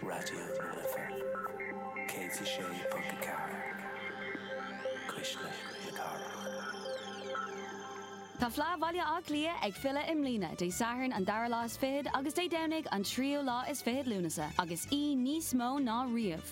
Raidió na Life 106.4 Cuisle na Cathrach. Tá Fleadh Bhaile Átha Cliath ag filleadh i mbliana, Dé Sathairn an dara lá is fichead agus Dé Domhnaigh an tríú lá is fichead Lúnasa, agus í níos mó ná riamh.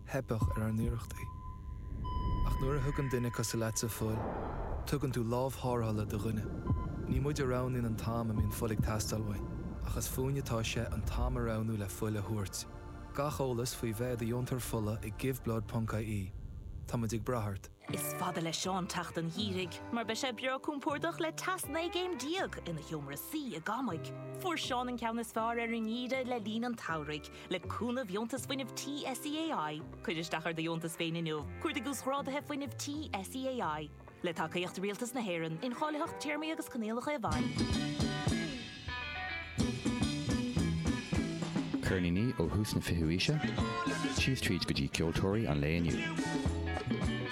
theipeadh ar ár n-iarrachtaí. Ach nuair a thugann duine cosúil leatsa fuil, tugann tú lámh thárrthála do dhuine. Ní muid a roghnaíonn an t-am a mbíonn fuil ag teastáil uainn, ach is fúinn atá sé an t-am a roghnú le fuil a thabhairt. Gach eolas faoi bheith i do dheontóir fola ag Give Blood ponc IE. Tá muid ag brath ort. Is fada le Seán teacht an gheimhridh mar beidh sé breá compordach le teas 19 gcéim ina sheomra suí i gCamaigh. Fuair Seán an ceann is fearr ar an ngeimhreadh le linn an tsamhraidh le cúnamh dheontas fuinnimh tí SEAI. Cuir isteach ar do dheontas féin inniu. Cuardaigh uasghráduithe fuinnimh tí SEAI le tacaíocht Rialtas na hÉireann, incháilitheacht téarmaí agus coinníollacha i bhfeidhm. Ceirníní ó thús na fichiú aoise síos tríd go dtí ceoltóirí an lae inniu.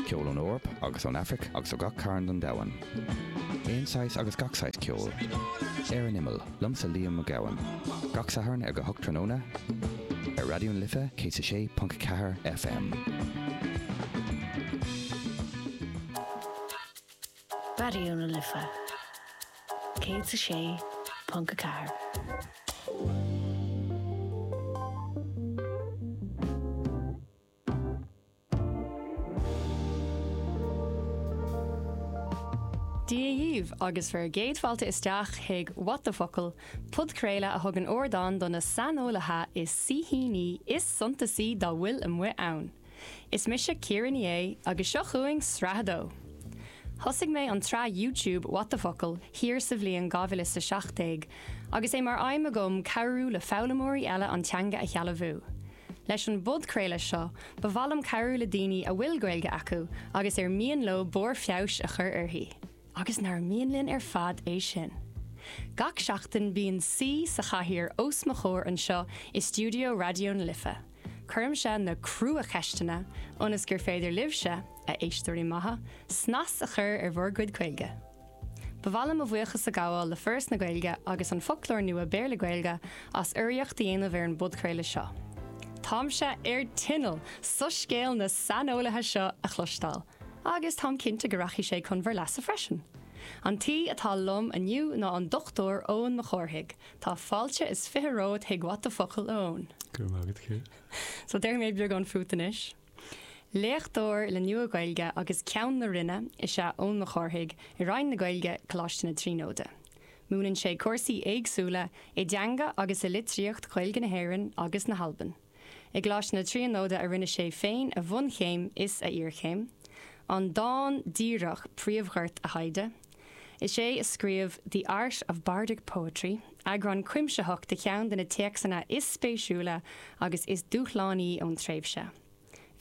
Ceol ón Eoraip agus ón Aifric agus ó gach cearn den domhan. Aon saghas agus gach saghas ceoil. Ar an Imeall, liomsa Liam Ó Gabhann. Gach Satharn ag a hocht tráthnóna ar Raidió na Life 106.4 FM. Raidió na Life 106.4. Dia dhaoibh agus bhur gcéad fáilte isteach chuig What the Focal, podchraoladh a thugann ardán do na saineolaithe is saoithiúla is suntasaí dá bhfuil amuigh ann. Is mise Ciara Ní É agus seo chugainn sraith a dó! Thosaigh mé an tsraith YouTube What the Focal thiar sa bhliain 2017 agus é mar aidhm agam cabhrú le foghlaimeoirí eile an teanga a shealbhú. Leis an bpodchraoladh seo, ba mhaith liom cabhrú le daoine a bhfuil Gaeilge acu agus ar mian leo barr feabhais a chur uirthi, agus nár mhian linn ar fad é sin! Gach seachtain bíonn saoi sa chathaoir os mo chomhair anseo i stiúideo Raidió na Life. Cuirimse na cruacheisteanna ionas gur féidir libhse, a éisteoirí maithe, snas a chur ar bhur gcuid Gaeilge. Ba mhaith liom mo bhuíochas a ghabháil le Foras na Gaeilge agus an Foclóir Nua Béarla-Gaeilge as urraíocht a dhéanamh ar an bpodchraoladh seo. Táimse ar tinneall soiscéal na saineolaithe seo a chloisteáil, agus táim cinnte go rachaidh sé chun bhur leasa freisin. An t-aoi atá liom inniu ná an Dr Eoin Mac Cárthaigh, Tá fáilte is fiche romhat chuig What the Focal a Eoin. Go raibh maith agat, Ciara. So déarfaidh mé beagán fút anois. Léachtóir le Nua-Ghaeilge agus Ceann na Roinne is ea Eoin Mac Cárthaigh i Roinn na Gaeilge, Coláiste na Tríonóide. Múineann sé cúrsaí éagsúla i dteanga agus i litríocht Ghaeilge na hÉireann agus na hAlban. I gColáiste na Tríonóide a rinne sé féin a bhunchéim is a iarchéim, an dán díreach príomhghort a thaighde. Is é a scríobh The Art of Bardic Poetry, eagrán cuimsitheach de cheann de na téacsanna is spéisiúla agus is dúshlánaí ón tréimhse.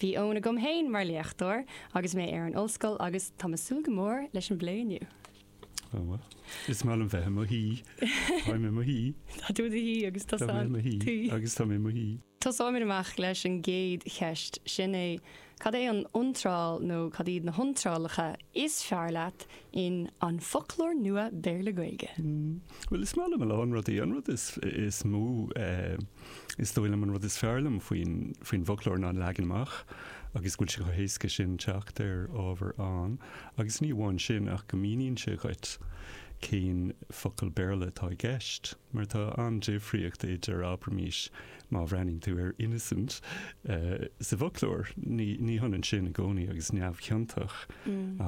Bhí Eoin agam féin mar léachtóir agus mé ar an ollscoil agus tá me ag súil go mór leis an bplé inniu. Oh well. Is maith liom bheith i mo shuí. Táim i mo shuí. Tá tú i do shuí agus tosaim. Táim i mo shuí agus táim i mo shuí. Tosóimid amach leis an gcéad cheist, sin é, cad é an iontráil nó cad iad na hiontrálacha is fearr leat in An Foclóir Nua Béarla-Gaeilge? Bhuel, is maith liom a lán rudaí. An rud is mó. Is dóigh liom an rud is fearr liom faoin bhfoclóir ná an leagan amach agus go bhfuil sé chomh héasca sin teacht ar ábhar ann agus ní amháin sin ach go míníonn sé dhuit cén focal Béarla atá i gceist mar tá an-difríocht idir, abraimís, má bhreathnaíonn tú ar innocent sa bhfoclóir, ní hionann sin i gcónaí agus neamhchiontach,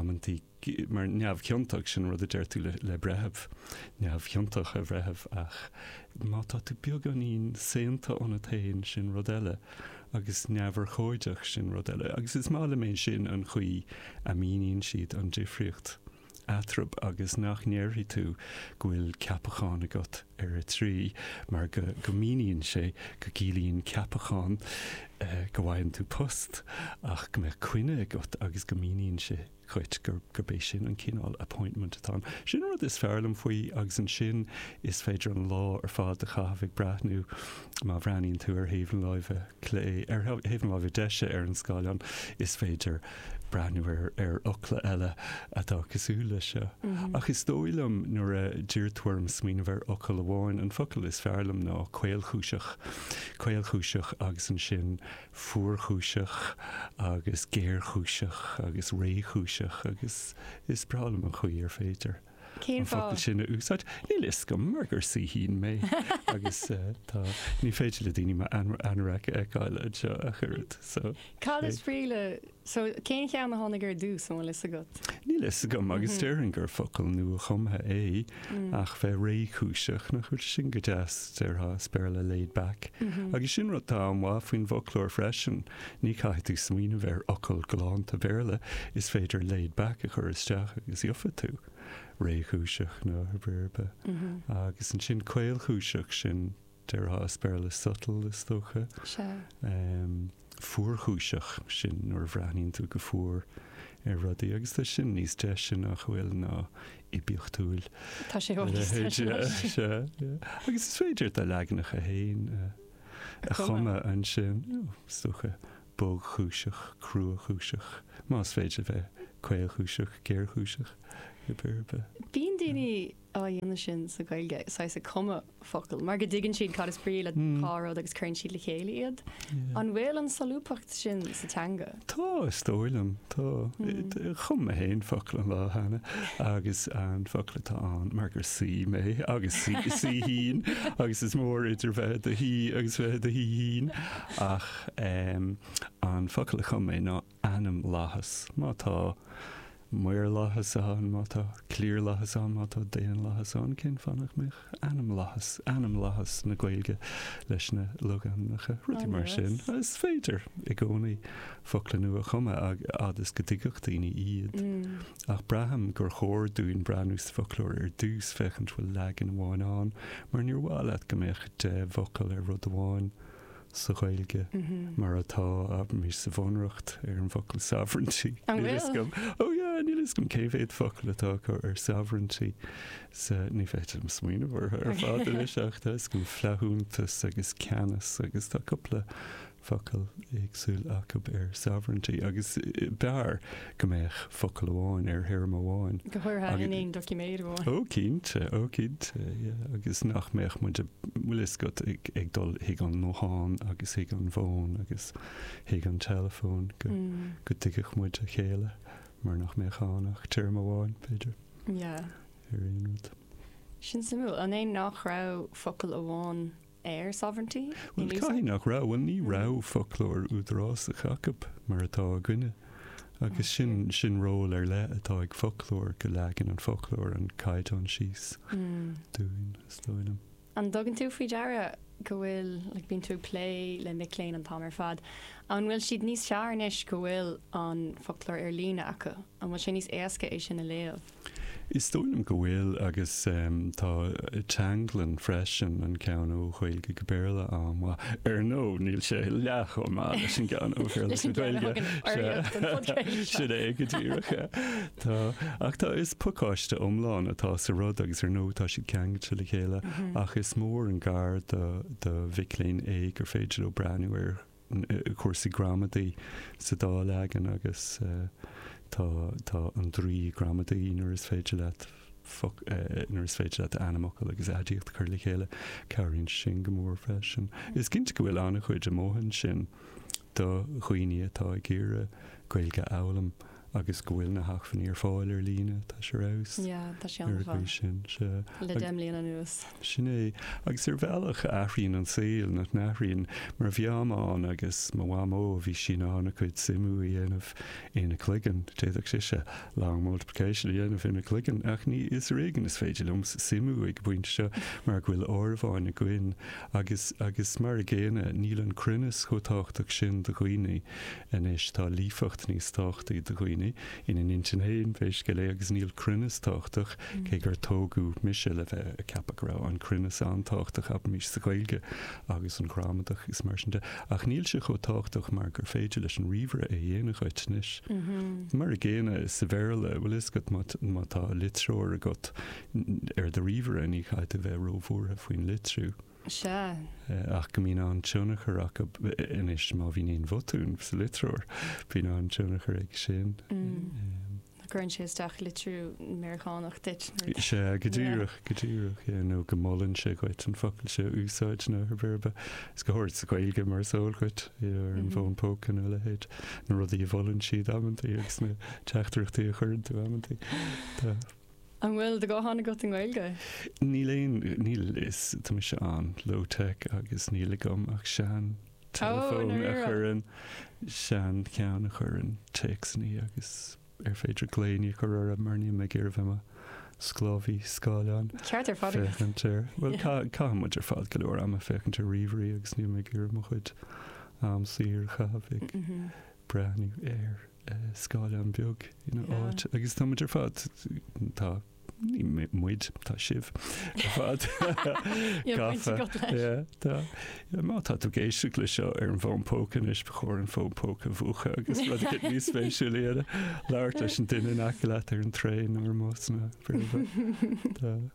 amantaí. mar neamhchiontach, sin an rud a deir tú le breitheamh, neamhchiontach a bhreithimh, ach má tá tú beagáinín, saonta ionat féin, sin rud eile, agus neamhurchóideach, sin rud eile. Agus is maith liom é sin an chaoi a míníonn siad an difríocht eatraimh agus nach ndéarfaidh tú go bhfuil ceapachán agat ar 3, mar go míníonn sé go gciallaíonn ceapachán go bhfaigheann tú post ach go mbeadh coinne agat agus go míníonn sé. dhuit gur bé sin an cineál appointment atá ann. Sin an rud is fearr liom faoi agus ansin is féidir an lá ar fad a chaitheamh ag breathnú, má bhreathnaíonn tú ar thaobh na láimhe clé, ar thaobh na láimhe deise ar an scáileán, is féidir breathnú ar ar fhocla eile atá cosúil leis seo. Ach is dóigh liom nuair a d'iarr tú orm smaoineamh ar fhocal amháin, an focal is fearr liom ná caolchúiseach. Caolchúiseach agus ansin. fuarchúiseach agus géarchúiseach agus réchúiseach agus is breá liom an chaoi ar féidir an focal sin a úsáid. Níl a fhios agam mar gur saoithín mé agus tá ní féidir le daoine m'anorak a fheiceáil anseo ach oiread so. Cad is brí le. So, cén cheann a tháinig ar dtús, an bhfuil fhios agat? Níl fhios agam, agus déarfainn gur focal nua-chumtha é, ach bheith réchúiseach, nach bhfuil sin go deas? Déarfá as Béarla laid back. Agus sin rud atá an-mhaith faoin bhfoclóir freisin, ní chaithfidh tú smaoineamh ar fhocal galánta Béarla, is féidir laid back a chur isteach agus gheobhaidh tú réchúiseach nó whatever, agus ansin caolchúiseach, sin Déarfá as Béarla subtle, is dócha. Sea. Fuarchúiseach, sin nuair a bhreathnaíonn tú go fuar ar rudaí, agus tá sin níos deise, nach bhfuil, ná oibiachtúil. Tá sé i bhfad níos deise anois. Sea. Agus is féidir do leaganacha féin a chumadh ansin, is dócha, bogchúiseach, cruachúiseach, más féidir a bheith caolchúiseach, géarchúiseach, ar bith ar bith. Bíonn daoine á dhéanamh sin sa Ghaeilge, saghas ag cumadh focal, mar go dtuigeann siad cad is brí le dhá rud agus cuireann siad le chéile iad. An bhfuil an solúbthacht sin sa teanga? Tá, is dóigh liom. Tá. Chum mé féin focal an lá cheana agus an focal atá ann, mar gur saoi mé agus saoithín agus is mór idir bheith i do shaoi agus bheith i do shaoithín ach an focal a chum mé ná, ainmlathas, má tá, maorlathas ann, má tá, cliarlathas ann, má tá, daonlathas ann, cén fáth nach mbeadh ainmlathas, ainmlathas na Gaeilge leis na logainmneacha, rudaí mar sin. Is féidir i gcónaí focla nua a chumadh, a fhad is go dtuigfeadh daoine iad. Ach braithim gur chóir dúinn breathnú sa bhfoclóir ar dtús, féachaint bhfuil leagan amháin ann, mar níor mhaith leat go mbeadh deich bhfocal ar rud amháin, sa Ghaeilge mar atá sa Bhunreacht ar an bhfocal sovereignty. An bhfuil? Níl a fhios agam cé mhéad focal atá acu ar sovereignty. Ní féidir liom smaoineamh orthu ar fad anois ach tá a fhios agam flaithiúntas agus ceannas agus tá cúpla focal éagsúil acu ar sovereignty agus b'fhearr go mbeadh focal amháin ar théarma amháin. go háirithe in aon doiciméad amháin. Ó, cinnte, ó, cinnte, yeah, agus nach mbeadh muid, bhfuil fhios agat, ag dul chuig an nguthán agus chuig an bhfón agus chuig an teileafón go dtuigfeadh muid a chéile mar nach mbeadh ann ach téarma amháin, b'fhéidir, ar aon rud. Sin suimiúil. An é nach raibh focal amháin air, sovereignty. Bhuel, caithfidh nach raibh. Bhuel, ní raibh foclóir údarásach acu mar atá againne. Agus sin, sin ról ar leith atá ag foclóir, go leagann an foclóir an caighdeán síos dúinn, is dóigh liom. An dtugann tú faoi deara go bhfuil, like, bíonn tú ag plé le mic léinn an t-am ar fad, an bhfuil siad níos fearr anois go bhfuil an foclóir ar líne acu? An bhfuil sé níos éasca é sin a léamh? Is dóigh liom go bhfuil, agus tá Teanglann freisin, an ceann ó Ghaeilge go Béarla an-mhaith. Ar ndóigh, níl sé leath chomh maith leis an gceann ó Bhéarla go Gaeilge. Sin é go díreach. Tá. Ach tá, is pacáiste iomlán atá sa rud agus ar ndóigh tá siad ceangailte le chéile ach is mór an gar do mhic léinn é gur féidir leo breathnú ar cúrsaí gramadaí sa dá leagan agus tá an draoi gramadaí nuair is féidir leat nuair is féidir leat ainmfhocal agus aidiacht a chur le chéile, cabhraíonn siad sin go mór freisin. Is cinnte go bhfuil an-chuid amuigh ansin do dhaoine atá ag iarraidh Gaeilge a fhoghlaim. agus go bhfuil na hacmhainní ar fáil ar líne, tá sé ar fheabhas. Yeah, tá sé an-mhaith. Ar an gcaoi sin, sea. Le deich mbliana anuas. Sin é. Agus ar bhealach, athraíonn an saol, nach n-athraíonn? Mar mo mham agus mo mhamó, bhí sí in ann a cuid suimiú a dhéanamh ina cloigeann. D'fhéadfadh sise long multiplication a dhéanamh ina cloigeann, ach ní, is ar éigean is féidir liom suimiú ag an bpointe seo mar go bhfuil áireamháin againn. Agus, agus mar an gcéanna, níl an cruinneas chomh tábhachtach sin do dhaoine. Anois tá líofacht níos tábhachtaí do dhaoine ina n-intinn féin pé scéal é agus níl cruinneas tábhachtach, cé gur tógadh mise le bheith ag ceapadh go raibh an cruinneas an-tábhachtach, abraimis, sa Ghaeilge agus an ghramadach agus mar sin de, ach níl sé chomh tábhachtach mar gur féidir leis an ríomhaire é a dhéanamh dhuit anois. Mar an gcéanna sa Bhéarla, bhfuil a fhios agat, má tá litreoir agat ar do ríomhaire ní chaithfidh tú bheith róbhuartha faoin litriú. Sea. ach go mbíonn an-tionchar acu anois, má bhíonn aon bhotún sa litreoir, bíonn an-tionchar aige sin. Cuireann sé isteach litriú Meiriceánach duit. Sea, go díreach, go díreach, yeah, nó go molann sé dhuit an focal sin a úsáid nó ar bhealach ar bith. Is go háirid sa Ghaeilge, mar is eol dhuit, yeah, ar an bhfón póca nó a leithéid, na rudaí a mholann siad amantaí agus na teachtaireachtaí a chuireann tú amantaí. An bhfuil do ghuthán agat i nGaeilge? Níl aon, níl, is, tá mise an-low tech agus níl agam ach sean, teileafón a chuireann, sean, ceann a chuireann téacsannaí agus ar féidir glaoiní a chur orthu mar níl mé ag iarraidh bheith i mo sclábhaí, scáileáin, Ceart ar fad agat. féachaint ar, bhuel, caith, caitheann muid ar fad go leor ama féachaint ar ríomhairí agus níl mé ag iarraidh mo chuid am saor a chaitheamh ag, breathnú ar scáileán beag ina áit agus tá muid ar fad, tá, ní muide, tá sibh ar fad gafa. Tá, má tá tú ag éisteacht leis seo ar an bhfón póca anois, ba chóir an fón póca a mhúchadh agus rud éicint níos spéisiúla eile, labhairt leis an duine in aice leat ar an traein nó ar an mbus nó whatever.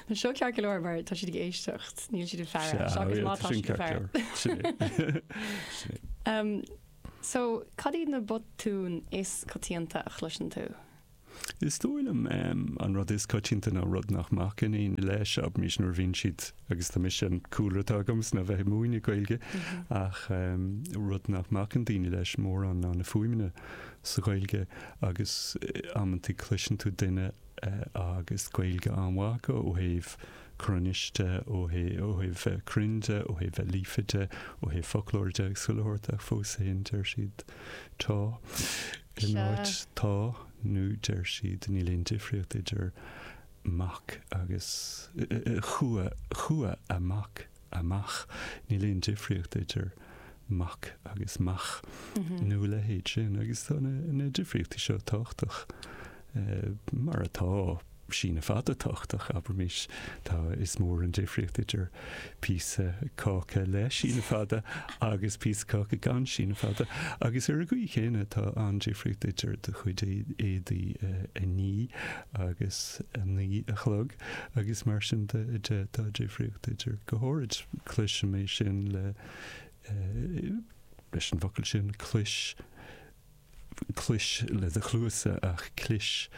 Tá seo ceart go leor mar tá siad ag éisteacht, níl siad ag faire, Sea, seachas é, má tá tá sin siad ag ceart go faire. leor. Sin é. Sin é. Umm, so, cad iad na botúin is coitianta a chloiseann tú? Is dóigh liom em, an rud is coitianta ná rud nach mbacann éinne leis, abraimis nuair a bhíonn siad, agus tá mise an cúlra atá agamsa ná bheith ag múineadh Gaeilge, ach em, rud nach mbacann daoine leis mórán ná na fuaimeanna sa Ghaeilge, agus eh, amantaí cloiseann tú duine, agus Gaeilge an-mhaith acu ó thaobh cruinnis de, ó thaobh, ó thaobh cruinnis de, ó thaobh líofacht de, ó thaobh foclóra de agus chuile shórt ach fós féin deir siad 'tá' in áit 'tá' nó deir siad 'níl aon difríocht idir 'mac' agus 'chua', 'chuaigh amach' amach. Níl aon difríocht idir mac agus mach nó a leithéid sin agus tá na difríochtaí seo tábhachtach, mar tá síneadh fada tábhachtach, abraimis. Tá, is mór an difríocht idir píosa cáca le síneadh fada agus píosa cáca gan síneadh fada. Agus ar an gcaoi chéanna, tá an-difríocht idir do chuid éadaí a ní agus a naoi a chlog. agus mar sin de, tá difríocht idir, go háirid, cloisim é sin le, leis an bhfocal sin, clois, clois le do chluasa ach clis,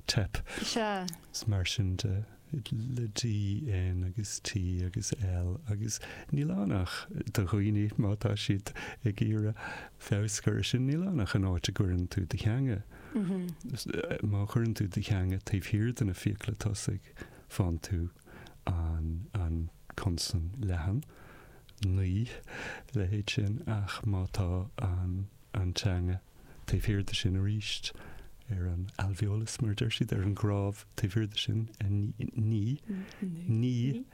teip. Sea. Is mar sin de, le D, N agus T agus L agus níl ann ach do dhaoine má tá siad ag iarraidh feabhas a chur air sin níl ann ach an áit a gcuireann tú do theanga. Má chuireann tú do theanga taobh thiar de na fiacla tosaigh, faigheann tú an consan leathan, naoi, leithéid sin, ach má tá an teanga taobh thiar de sin arís, ar an alveolus, mar a deir siad, ar an gcnámh taobh thiar de sin, ni, ni, ni,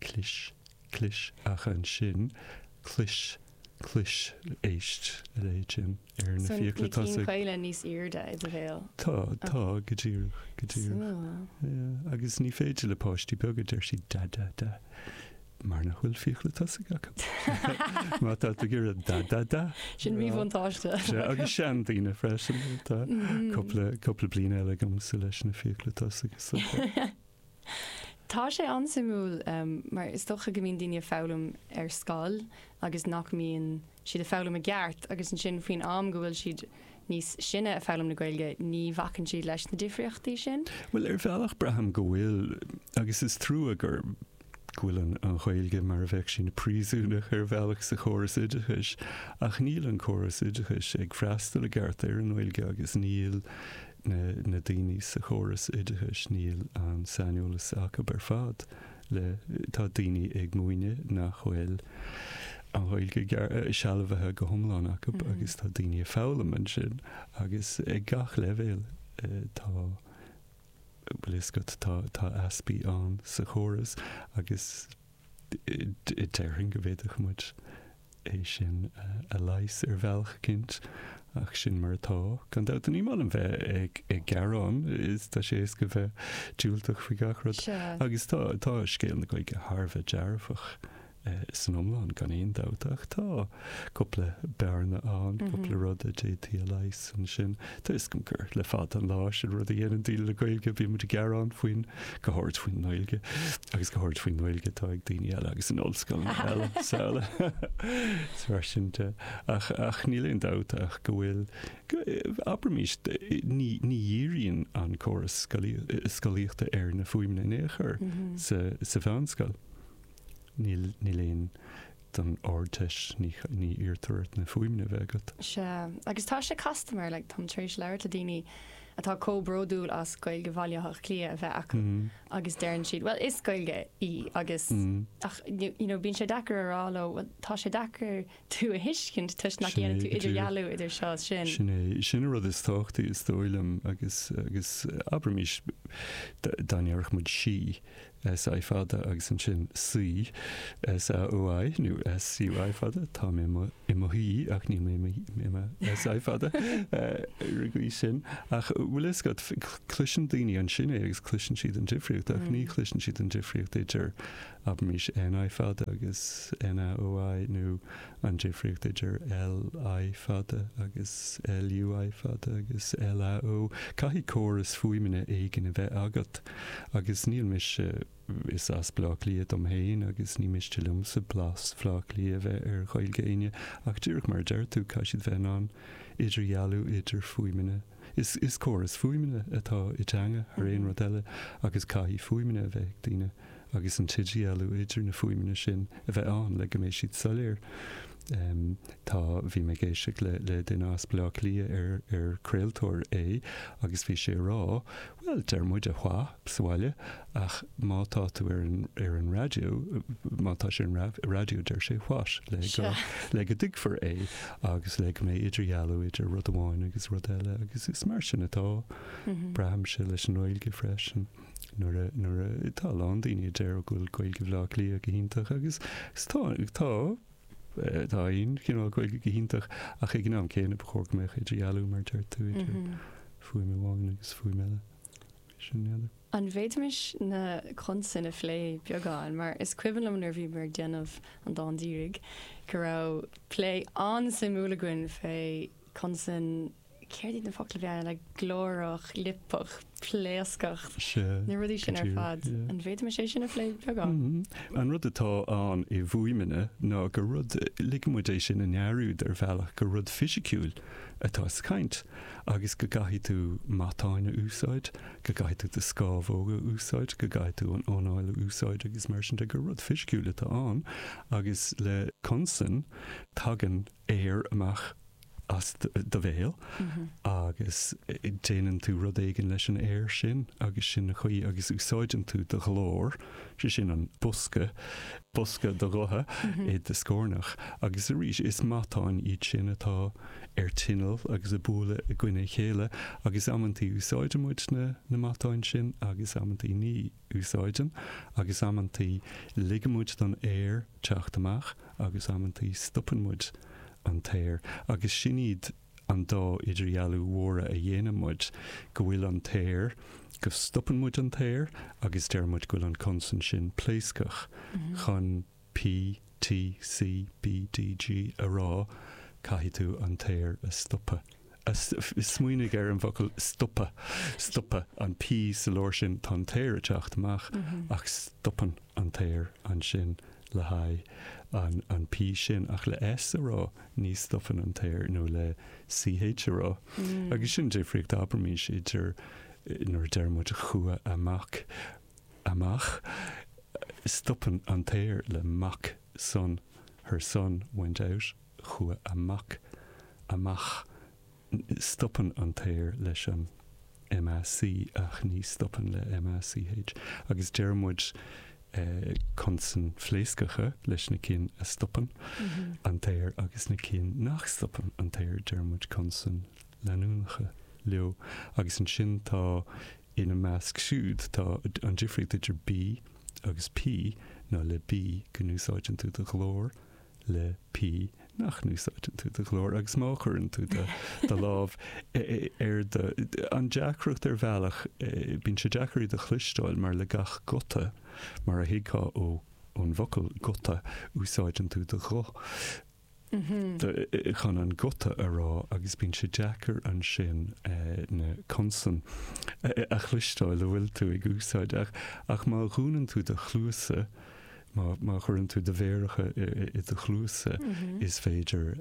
Clis, clis, ach ansin, clois, clois, éist a leithéid sin ar na fiacla tosaigh. So na cinn chaola níos airde i do bhéal? Tá, tá, go díreach, go díreach. Súil. Agus ní féidir le páistí beaga, deir sí, da, da, da, mar nach bhfuil fiacla tosaigh acu. Má tá tú ag iarraidh da, da, da. Sin míbhuntáiste. Sea, agus seandaoine freisin, tá cúpla, cúpla bliain eile agam sula leis na fiacla tosaigh. Tá sé an-suimiúil mar is dócha go mbíonn daoine ag foghlaim ar scoil agus nach mbíonn siad ag foghlaim i gceart agus ansin faoin am go bhfuil siad níos sine ag foghlaim na Gaeilge ní bhacann siad leis na difríochtaí sin. Bhuel ar bhealach braithim go bhfuil agus is trua gur go bhfuil an Ghaeilge mar a bheadh sí ina príosúnach ar bhealach sa chóras oideachais ach níl an córas oideachais ag freastal i gceart ar an nGaeilge agus níl na daoine sa chóras oideachais níl an saineolas acu ar fad le tá daoine ag múineadh nach bhfuil an Ghaeilge sealbhaithe go hiomlán acu agus tá daoine ag foghlaim ansin agus ag gach leibhéal tá bhfuil a fhios agat tá tá easpaí ann sa chóras agus Déarfainn go bhféadfadh muid é sin a leigheas ar bhealach eicínt, ach sin mar atá. Gan dabht, ní maith liom bheith ag gearán, is tá sé éasca bheith diúltach faoi gach rud. Agus tá, tá scéal na Gaeilge thar a bheith dearfach san iomlán, gan aon dabht, ach tá cupla bearna ann, cupla rud a d'fhéadfaí a leigheas ansin. Tá a fhios againn gur le fada an lá sin rud a dhéanann daoine le Gaeilge, bíonn muid ag gearán faoin, go háirid faoin nGaeilge, agus go háirid faoin nGaeilge atá ag daoine eile agus in ollscoileanna eile sa Is mar sin de. Ach, ach níl aon dabht ach go bhfuil, abraimis, ní, ní dhíríonn an córas scolaíochta ar na fuaimeanna in aon chor sa, sa mheánscoil. Níl aon don Ardteist, ní iarrtar ort na fuaimeanna a bheith agat. Sea, agus tá sé casta mar, like, táim tar éis labhairt le daoine atá comh bródúil as Gaeilge Bhaile Átha Cliath a bheith acu agus deireann siad, bhuel, is Gaeilge í agus, ach, you know, bíonn sé deacair a rá leo, bhuel, tá sé deacair tú a thuiscint toisc nach ndéanann tú idirdhealú idir seo is sin. Sin é, sin an rud is tábhachtaí is dóigh liom agus, agus abraimis, dá ndéarfadh muid sí, SI fada agus ansin saoi, SAOI, nó SUI fada, tá mé i mo shuí ach níl mé i mo SI fada ar an gcaoi sin. Ach bhfuil a fhios agat, cloiseann daoine ansin é agus cloiseann siad an difríocht ach ní chloiseann siad an difríocht idir abraimis NI fada agus NAOI nó an difríocht idir LI fada agus LUI fada agus LAO, caithfidh córas fuaimeanna éigin a bheith agat, agus ní miste, is as Bleá Cliath dom féin agus ní miste liomsa blas Bhleá Cliath a bheith ar Ghaeilge éinne, ach díreach mar a deir tú, caithfidh siad bheith in ann idirdhealú idir fuaimeanna. Is córas fuaimeanna atá i dteanga thar aon rud eile agus caithfidh fuaimeanna a bheith ag daoine. agus an t-idirdhealú idir na fuaimeanna sin a bheith ann le go mbeidh siad soiléir. Tá, bhí mé ag éisteacht le, le duine as Baile Átha Cliath ar, ar craoltóir é agus bhí sé ag rá, bhuel, deir muid a what sa bhaile ach má tá tú ar an, ar an raidió, má tá sé ar an raidió deir sé what le go, le go dtuigfear é agus le go mbeidh idirdhealú idir rud amháin agus rud eile agus is mar sin atá, braithimse, leis an nGaeilge freisin. nuair a, nuair a, tá a lán daoine a deir go bhfuil Gaeilge Bhleá Cliath go hiontach agus tá, tá, tá aon chineál Gaeilge go hiontach ach ag an am céanna ba chóir go mbeadh idirdhealú mar a deir tú, idir fuaim amháin agus fuaim eile. An bhféadfaimis na consain a phlé beagán mar is cuimhin liom nuair a bhíomar ag déanamh an dán dírigh go raibh plé an-suimiúil againn fé consan céard iad na focail beaga le glórach, liopach, pléascach, na rudaí sin ar fad. An bhféadfaimis é sin a phlé beagán? Mm-hmm. An rud atá ann i bhfuaimeanna ná gur rud, ligeann muid é sin a ndearúd ar bhealach, gur rud fisiciúil atá sa chaint agus go gcaithfidh tú matáin a úsáid, go gcaithfidh tú do scamhóga a úsáid, go gcaithfidh tú an anáil a úsáid agus mar sin de, gur rud fisiciúil atá ann agus le consain tagann aer amach as do bhéal agus déanann tú rud éigin leis an aer sin agus sin an chaoi agus úsáideann tú do ghlór, sé sin an bosca, bosca do ghutha i do scornach agus arís is matáin iad sin atá ar tinneall agus ag bualadh i gcoinne a chéile agus amantaí úsáideann muid na matáin sin agus amantaí ní. úsáideann, agus amantaí ligeann muid don aer teacht amach agus amantaí stopann muid an t-aer, agus sin iad an dá idirdhealú mhóra a dhéanann muid, go bhfuil an t-aer, go stopann muid an t-aer agus deir muid go bhfuil an consan sin pléascach chun P, T, C, B, D, G, a rá, caithfidh tú an t-aer a stopadh. Smaoinigh ar an bhfocal stopadh. Stopadh an P sa lár sin, tá an t-aer ag teacht amach ach stopann an t-aer ansin le haghaidh an P sin. Ach le S a rá, ní stopann an t-aer, nó le CH a rá. Agus sin difríocht, abraimís, idir nuair a deir muid chuaigh a mac, amach. Stopann an t-aer le mac son, her son went out, chuaigh a mac amach. Stopann an t-aer leis an MAC ach ní stopann le MACH agus deir muid consain phléascacha leis na cinn a stopann an t-aer agus na cinn nach stopann an t-aer deir muid consain leanúnacha leo agus ansin tá Ina measc siúd tá an difríocht idir B agus P ná le B go n-úsáideann tú do ghlór, le P nach n-úsáideann tú do ghlór agus má chuireann tú do do lámh ar do An deacracht ar bhealach, bíonn sé deacair iad a chloisteáil mar le gach guta, mar a thuigfeá ó ón bhfocal guta, úsáideann tú do ghuth. chun an guta a rá agus bíonn sé deacair ansin na consain a chloisteáil a bhfuil tú ag úsáid. Ach má dhúnann tú do chluasa, má chuireann tú do mhéaracha i do chluasa, is féidir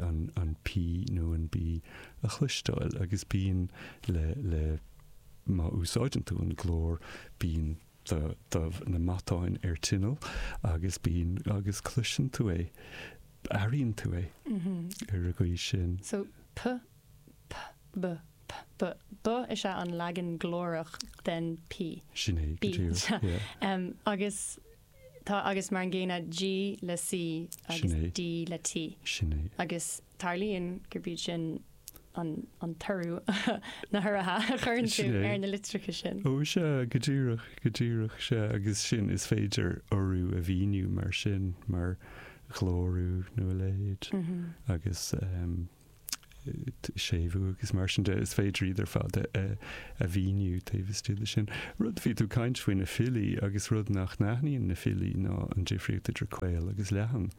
an P nó an B a chloisteáil agus bíonn le, má úsáideann tú an glór, bíonn do, na matáin ar tinneall agus bíonn, agus cloiseann tú é, airíonn tú é ar an gcaoi sin. So p, p, b, p, b, b is ea an leagan glórach den p. Sin é, go díreach, yeah. Agus tá, agus mar an gcéanna, g le c agus d le t. Sin é. Agus tarlaíonn gurb iad sin an t-urú, na huruithe a chuireann tú ar na litreacha sin. Ó, sea, go díreach, go díreach, sea, agus sin, is féidir urú a mhíniú mar sin, mar ghlórú nó a leithéid, agus séimhiú agus mar sin de, is féidir iad ar fad a mhíniú taobh istigh de sin. Rud, bhí tú ag caint faoi na filí, agus rud nach n-aithníonn na filí ná an difríocht idir caol agus leathan,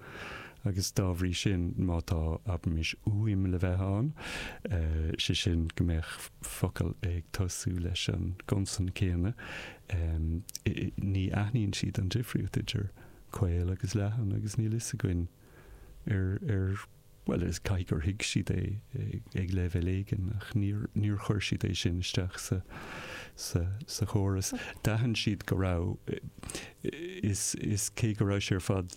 agus dá bhrí sin, má tá, abraimis, uaim le bheith ann, sé sin, go mbeadh focal ag tosú leis an gconsan céanna, ní aithníonn siad an difríocht idir caol agus leathan agus níl fhios againn ar, ar, bhuel, is, caithfidh gur thuig siad é ag leibhéal éigin ach níor, níor chuir siad é sin isteach sa, sa, sa chóras. D'aithin siad go raibh, is, is cé go raibh sé ar fad,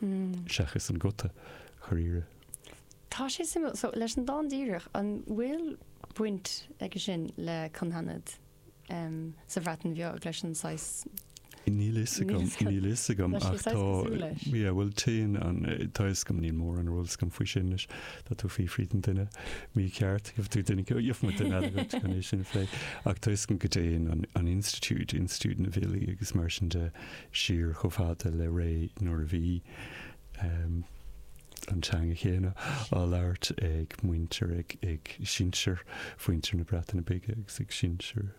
seachas an guta chor oighre. Tá sé suimiúil. So, leis an dán díreach, an bhfuil baint aige sin le cynghanedd sa Bhreatain Bheag, leis an saghas? Níl a fhios agam, níl a fhios agam. Tá sé saghas cosúil leis. Yeah, bhuel, téann an, tá a fhios agam, níl mórán eolas agam faoi sin anois. Tá tú ag fiafraí den duine mícheart, gheobhaidh tú duine, gheobhaidh muid duine eile dhuit chun é sin a phlé. Ach tá a fhios agam go dtéann an, an institiúid, institiúid na bhfilí agus mar sin de, siar chomh fada le ré nuair a bhí an teanga chéanna á labhairt ag muintir, ag sinsir mhuintir na Breataine Bige agus ag sinsir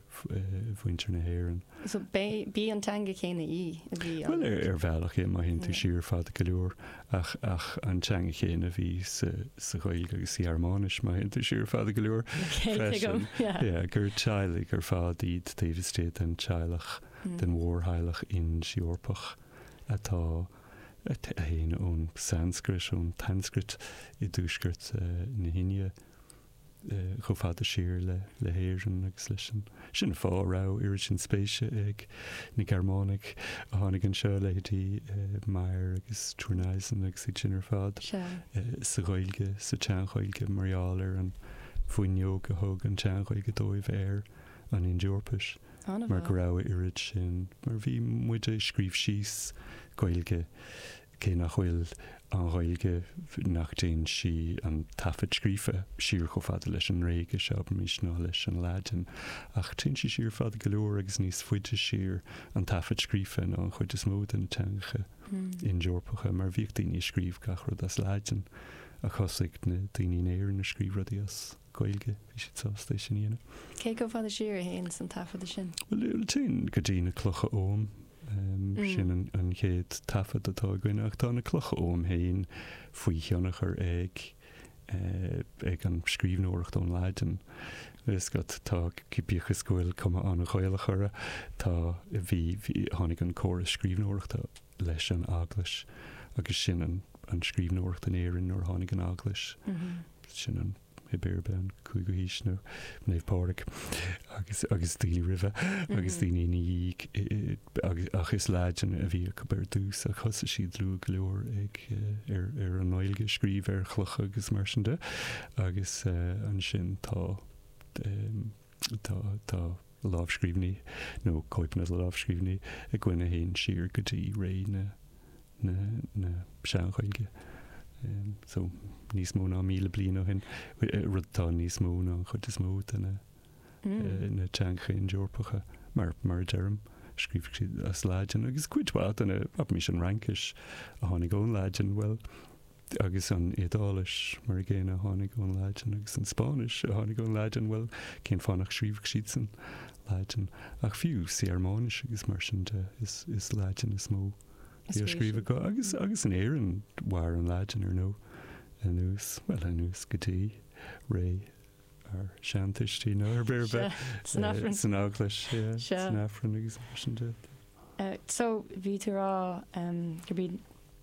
mhuintir na hÉireann. So b'í an teanga chéanna í a bhí á labhairt? Bhuel, ar bhealach é, má théann tú siar fada go leor, ach is í an teanga chéanna a bhí sa Ghaeilge agus sa Ghearmáinis, má théann tú siar fada go leor, freisin. Yeah, gur teaghlaigh ar fad iad taobh istigh den teaghlach. den mhórtheaghlach Ind-Eorpach atá, a théann ón Sanscrait, ón tSanscrait i dtuaisceart na hIndia, chomh fada siar le hÉirinn agus leis an. Sin an fáth a raibh oiread sin spéise ag na Gearmánaigh a tháinig anseo, leithéidí Meyer agus Thurneysen agus iad sin ar fad, sa Ghaeilge, sa tSean-Ghaeilge, mar gheall ar an bhfuinneog a thug an tSean-Ghaeilge dóibh ar. an Ind-Eorpais, mar go raibh a oiread sin, mar a bhí muid ag scríobh síos, Gaeilge, cé nach bhfuil an Ghaeilge, nach dtéann sí, an taifead scríofa, siar chomh fada leis an nGréigis, abraimis, ná leis an Laidin, ach téann sí siar fada go leor agus níos faide siar, an taifead scríofa, ná an chuid is mó de na teangacha Ind-Eorpacha, mar bhíodh daoine ag scríobh gach rud as Laidin, ach thosaigh na daoine in Éirinn ag scríobh rudaí as. Gaeilge, bhí siad sásta é sin a dhéanamh. Cé chomh fada siar a théanns an taifeadadh sin? Bhuel, téann go dtí na Clocha Oghaim, sin an chéad taifead atá againn, ach tá na Clocha Oghaim féin faoi thionchar ag eh an scríbhneoireacht ón Laidin. Is, tá, bíodh is go bhfuil cuma an-Ghaelach orthu, tá, bhí, tháinig an córas scríbhneoireachta leis an Eaglais agus sin an scríbhneoireacht in Éirinn nuair a tháinig an Eaglais, sin an, thiar i mblianta, an cúigiú haois, nó Naomh Pádraig, agus agus daoine roimhe, agus daoine ina dhiaidh, agus ach is Laidin a bhí acu ar dtús, ach thosaigh siad luath go leor ag ar ar an nGaeilge, scríobh ar chlocha agus mar sin de, agus ansin tá tá tá. lámhscríbhinní, nó cóipeanna de lámhscríbhinní, againn a théann siar go dtí ré na Sean-Ghaeilge, so níos mó ná míle bliain ó shin, rud atá níos mó ná an chuid is mó de na teangacha Ind-Eorpacha, mar a deirim, scríobhadh siad as Laidin, agus cuid mhaith de na, abraimis, an Fhraincis a tháinig ón Laidin, bhuel, Agus an Iodáilis? Mar an gcéanna, a tháinig ón Laidin. Agus an Spáinnis? A tháinig ón Laidin. Bhuel, cén fáth nach scríobhfadh siadsan Laidin? Ach fiú sa Ghearmáinis agus mar sin de, is Laidin is mó a bhí á scríobh acu. Agus, agus in Éirinn, mhair an Laidin, ar ndóigh, anuas, bhuel, anuas go dtí ré ár seantuistí, nó ar bith, san Eaglais, san Aifreann agus mar sin de. So, bhí tú ag rá go mbíonn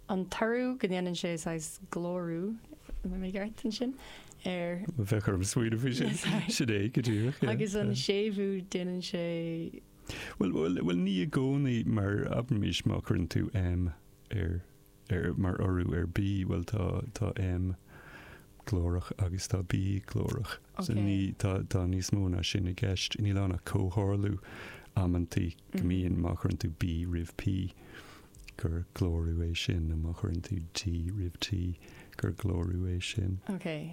an t-urú go ndéanann sé saghas glórú, an bhfuil mé ceart ansin? ar. bheadh orm smaoineamh faoi sin. Sin é, go díreach. Agus an séimhiú, déanann sé. Bhuel, bhuel, bhuel, ní i gcónaí, mar abraimís má chuireann tú M ar, ar, mar urú ar B, bhuel, tá, tá M glórach agus tá B glórach. So ní, tá, tá níos mó ná sin i gceist. Níl ann ach comhtharlú amantaí go mbíonn má chuireann tú B roimh P. gur glórú é sin, nó má chuireann tú D roimh T, gur glórú é sin. Okay.